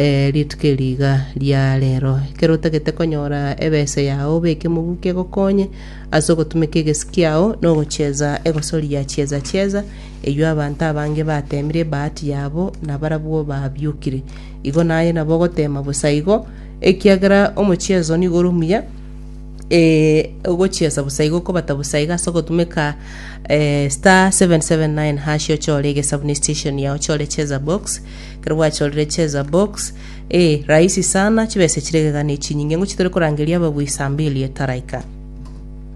Ee, rituko eri iga ria reero, ekero otagete konyora ebese yao, beka emobuku egokonye ase ogotumeka egesi kiao na ogochieza egosoria chieza chieza, eyio abanto abange bateemire ebahati yabo na barabwo babiokire. Igo naye nabo ogoteema bosa igo, ekiagera omochiezo nigo ore omuya, ee, ogochiesa bosa igo, okobata bosa iga ase ogotumeka ee, *779#, ochore egesabu ne station yao, ochore cheza box. ekero bwachorire cheza box ee rahisi sana chibesa echire egegani echinyinge ng'o chitari korangeria ababui saa mbili etaraika.